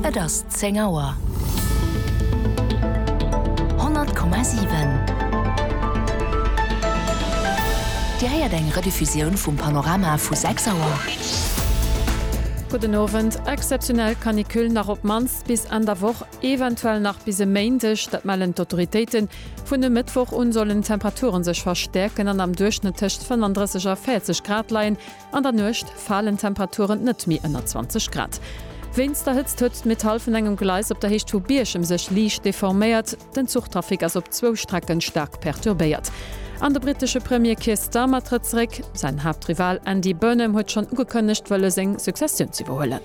Et ass zéng Auer. 100,7 Dir héiert eng Rediffusioun vum Panorama vu 6 Auer. Gudden Owend. Exzeptionell Canicule nach op d'mannst bis Enn der Woch, eventuell nach bis e Méindeg, dat mellen d'Autoritéiten. Vun e Mëttwoch un sollen d'Temperature sech verstäerken an am Duerchschnëtt tëscht 35 a 40 Grad leien. An der Nuecht falen d'Temperaturen net méi ënner 20 Grad. Wéinst der Hëtzt huet d'Metall vun engem Gleis op der Héicht vu Bierchem sech liicht deforméiert. Den Zuchtrafic ass op zwou Strecke staark perturbéiert. An de brittesche Premier Keir Starmer trëtt zeréck. Säin Haaptrival Andy Burnham huet schonn ugekënnegt, wëlle seng Successioun z'iwwerhuelen.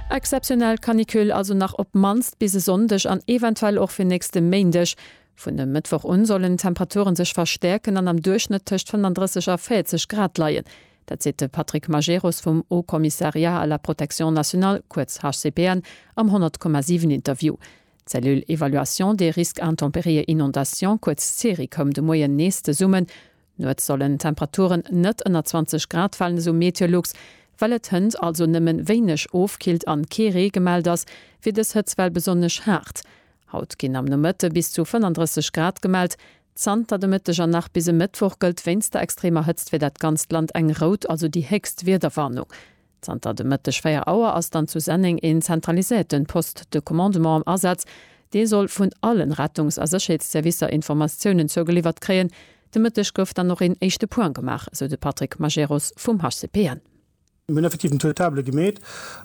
Exzeptionell Canicule also nach op d'mannst bis e Sonndeg an eventuell och fir nächste Méindeg. Vun e Mëttwoch un sollen d'Temperature sech verstäerken an am Duerchschnëtt tëscht 35 a 40 Grad leien. Dat seet de Patrick Majerus vum Haut Commissariat à la Protection Nationale, kuerz HCPN, am 100,7 Interview. D'Cellule Évaluation des Risques Intempéries et Inondations, kuerz CERI, koum de Moien nees zesummen. Nuets sollen d'Temperaturen net ënner 20 Grad falen, esou MeteoLux. Well et hënt also nëmmen wéineg ofkillt an kee Ree gemellt ass, wier dës Hëtzwell besonnesch haart. Haut ginn am Nomëtte bis zu 35 Grad gemellt. Zanter de Mëtteg an nach bis e Mëttwoch gëllt wéinst der extremer Hëtzt fir dat ganzt Land eng rout, also déi héchst Wiederwarnung. Zanter de Mëtteg 4 Auer ass dann zu Senneng een zentraliséierten Poste de commandement am Asaz, dee soll vun allen Rettungs a Sécherheetsservicer Informatiounen zougeliwwert kréien. De Mëtteg gouf dann och een éischte Point gemaach, esou de Patrick Majerus vum HCPN. Mir hunn effektiv den Taux de table gemeet.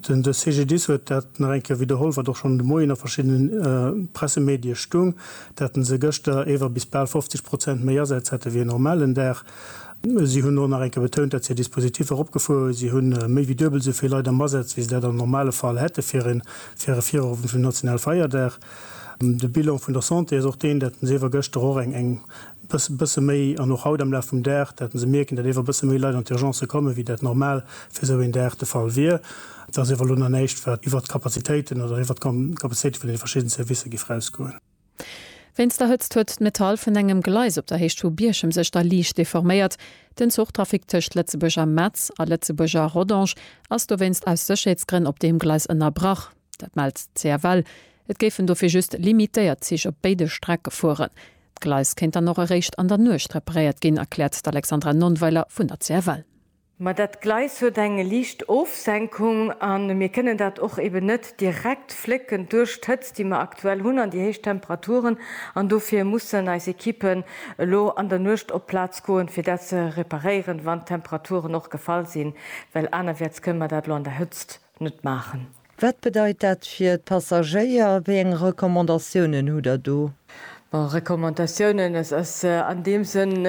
Den CGDIS huet dat nach eng Kéier widderholl, wat och schonn de Moien a verschiddene Pressemedie stoung, dat se gëschter ewer bis bal 50 Prozent méi Asätz hätte wéi en normalen Dag. Si hunn och nach eng Kéier betount, datt si hir Dispositiffer eropgefuer hunn. Si hu méi wéi duebel esou vill Leit am Asaz, wéi se dat am normale Fall hätte fir e Virowend vum nationale Feierdag. De Bilan vun der Santé ass och deen, datt se iewer gëschter och eng bësse méi an och haut am Laf vum Dag, datt se mierken, datt iewer bësse méi Leit an d'Urgencë kommen, wéi dat normal fir esou een Dag de Fall wier. Et ass iewer elo nach näischt, wat iwwert d'Kapazitéiten oder iwwert d'Kapazitéite vun deene verschidden Servicer géif erausgoen. Wéinst der Hëtzt huet d'Metall vun engem Gleis op der Héicht vu Bierchem sech da liicht deforméiert. Den Zuchtrafic tëscht Lëtzebuerg a Metz a Lëtzebuerg a Rodange ass dowéinst aus Sécherheetsgrënn op deem Gleis ënnerbrach. Dat mellt d'CFL. Et géifen dofir just limitéiert Zich op béide Strecke fueren. D'Gleis kéint dann och eréischt an der Nuecht reparéiert ginn, erkläert d'Alexandra Nonnweiler vun der CFL. Ma dat Gleis huet eng liicht Ofsenkung a mir kënnen dat och eben net direkt flécken duerch d'Hëtzt, déi mer aktuell hunn an déi héich Temperaturen. An dofir mussen eis Ekippen elo an der Nuecht op d'Plaz goen, fir dat ze reparéieren, wann d'Temperaturen och gefall sinn, well anerwäerts kënnen mer dat elo an der Hëtzt net maachen. Wat bedeit dat fir d'Passagéier? Wéi eng Recommandatiounen hutt Der do? Bon, Recommandatiounen, et ass an deem Sënn,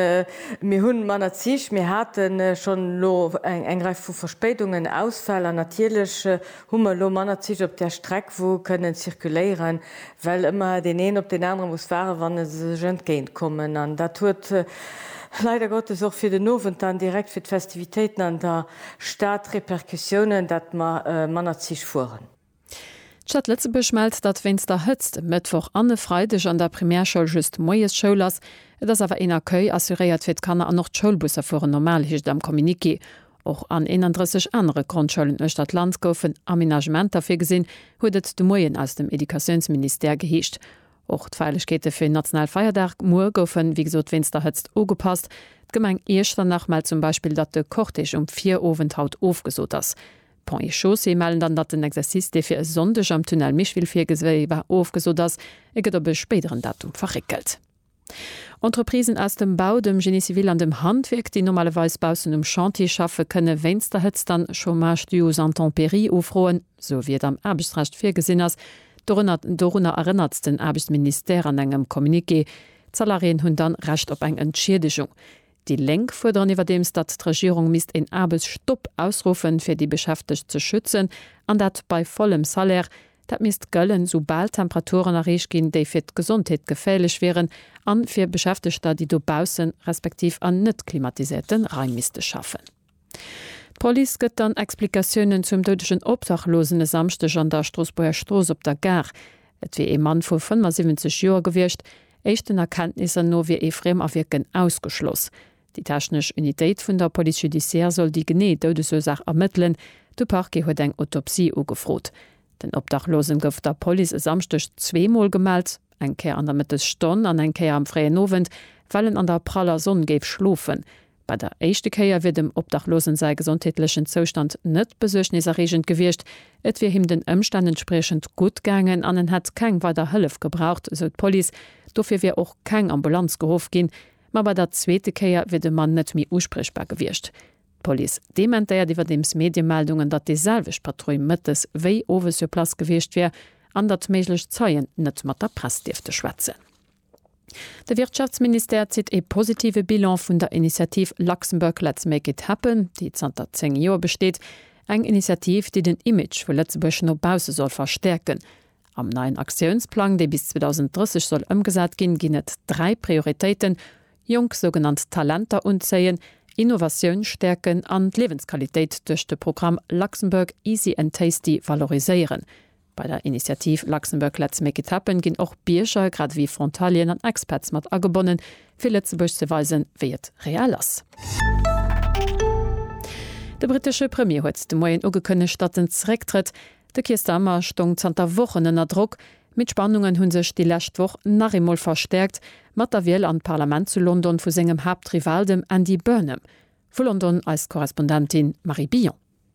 mir hu manner Zich, mir hate schonn elo eng Rei vu Verspéidungen, Ausfäll an natierlech hu mer elo manner Zich op där Streck, wou kënnen zirkuléieren, well ëmmer deen een op deen anere muss waarden, wann se sech entgéint kommen. An dat huet leider Gottes och fir den Owend dann direkt fir d'Festivitéiten an der. Staat Repercussiounen, datt mer manner Zich fueren. D'Stad Lëtzebuerg mellt, datt wéinst der Hëtzt e Mëttwoch an e Freideg an der Primärschoul just moies Schoul ass. Et ass awer een Accueil assuréiert fir d'Kanner an och d'Schoulbusser fueren normal, heescht et am Communiqué. Och an 31 anere Grondschoulen uechter d'Land goufen Amenagementer virgesinn, huet et de Moien aus dem Educatiounsministère geheescht. Och d'Feierlechkeete fir den nationale Feierdag muer goufen, wéi gesot, wéinst der Hëtzt ugepasst. D'Gemeng Iechternach mellt zum Beispill, datt de Cortège um Virowend haut ofgesot ass. Ponts et Chaussées mellen dann, datt den Exercice, dee fir e Sonndeg am Tunnel Micheville virgesi war, ofgesot ass. E gëtt op e spéideren Datum verréckelt. Entreprisen aus dem Bau, dem Génie civil an dem Handwierk, déi normalerweis baussen um Chantier schaffe, kënne wéinst der Hëtzt dann Chômage dû aux intempéries ufroen. sou wéi et am Aarbechtsrecht virgesinn ass, dorënner, dorunner erënnert den Aarbechtsministère an engem Communiqué. D'Salariéen hunn dann Recht op eng Entschiedegung. Déi Lénk fuerderen iwwerdeems, datt d'Regierung misst een Aarbechtsstopp ausruffen, fir déi Beschäftegt ze schützen, an dat bei vollem Salaire. Dat misst gëllen, sou bal Temperaturen erreecht ginn, déi fir d'Gesondheet geféierlech wieren, a fir Beschäftegter, déi dobaussen, respektiv an net-klimatiséierte Raim misste schaffen. D'Police gëtt dann Explikatiounen zum doudegen Obdachlosen e Samschdeg an der Stroossbuerger Strooss op der Gare. Et wier ee Mann vu 75 Joer gewiescht. Éischten Erkenntnisser no wier ee Friemawierken ausgeschloss. Déi technesch Unitéit vun der Police judiciaire soll déi genee Doudesursaach ermëttelen. De Parquet huet eng Autopsie ugefrot. Den Obdachlosen gouf der Police e Samschdeg zwee Mol gemellt, eng Kéier an der Mëttesstonn an eng Kéier am fréien Owend, well en an der praller Sonn géif schlofen. Bei der éischte Kéier wier dem Obdachlosen säi gesondheetlechen Zoustand net besuergneserreegend gewiescht, et wier him den Ëmstänn entspriechend gutt gaangen an en hätt keng weider Hëllef gebraucht, sou d'Police. Dofir wier och keng Ambulanz geruff ginn. Ma bei der zweete Kéier wier de Mann net méi uspriechbar gewiescht. D'Police dementéiert iwwerdeems Mediemeldungen, datt déi selwecht Patrull mëttes wéi owes sur place gewiescht wier an datt méiglech Zeien net mat der Press dierfte schwätzen. De Wirtschaftsministère zitt ee positive Bilan vun der Initiativ Luxembourg Let's Make It Happen, déi zanter 10 Joer besteet. Eng Initiativ, déi den Image vu Lëtzebuerg no bausse soll verstäerken. Am neien Aktiounsplang, dee bis 2030 soll ëmgesat ginn, ginn et dräi Prioritéiten, jonk sougenannt Talenter unzéien, Innovatioun stäerken an d'Liewensqualitéit duerch de Programm Luxembourg Easy and Tasty valoriséieren. Bei der Initiativ Luxembourg Let's Make It Happen ginn och Bierger, grad ewéi Frontalieren an Expats mat agebonnen, fir Lëtzebuerg ze weisen, wéi et real ass. De brittesche Premier huet de Moien ugekënnegt, datt en zerécktrëtt. De Keir Starmer stoung zanter Wochen ënner Drock, mee d'Spannungen hu sech déi lescht Woch nach eemol verstäerkt, mat der Wiel an d'Parlament zu London vu sengem Haaptrival, dem Andy Burnham. Vu London eis Korrespondentin Marie Billon.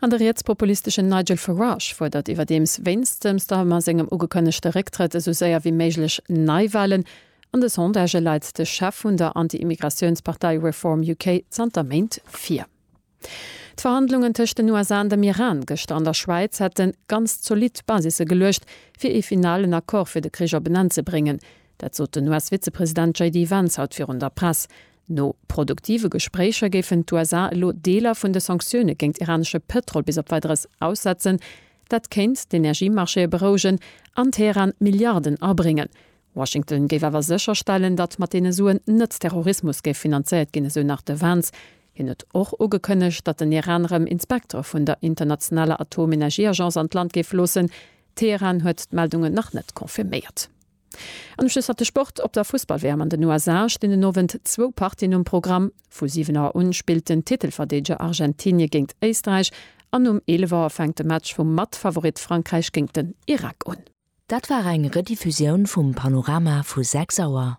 An de rietspopulisteschen Nigel Farage fuerdert iwwerdeems wéinst dem Starmer sengem ugekënnegte Récktrëtt esou séier wéi méiglech Neiwalen. An de Sondagë leit de Chef vun der Anti-Immigratiounspartei Reform UK zanter Méint vir. D'Verhandlungen tëscht den USA an dem Iran gëschter an der Schwäiz hätte ganz zolidd Basisse geluecht, fir ee finalen Accord fir de Krich op en Enn ze bréngen. Dat sot den US-Vizepresident JD Vance haut virun der Press. No produktive Gespréicher géifen d'USA elo Deeler vun de Sanktioune géint iranesche Pëtrol bis op Weideres aussetzen. Dat kéint d'Energiemarchéë berouegen an Teheran Milliarden abréngen. Washington géif awer sécherstellen, datt mat deene Suen net Terrorismus géif finanzéiert ginn, esou nach de Vance. Hien huet och ugekënnegt, datt den Iran erëm Inspektere vun der internationaler Atomenergieagence an d'Land géif loossen. Teheran huet d'Meldungen nach net confirméiert. An ech schlussferte Sport. Op der Fussball-WM an den USA stinn den Owend zwou Partien um Programm. Vu 7 Auer un spillt den Titelverdeedeger Argentinie géint Éisträich an um 11 Auer fänkt de Match vum Matfavorit Frankräich géint den Irak un. Dat war eng Rediffusioun vum Panorama vu 6 Auer.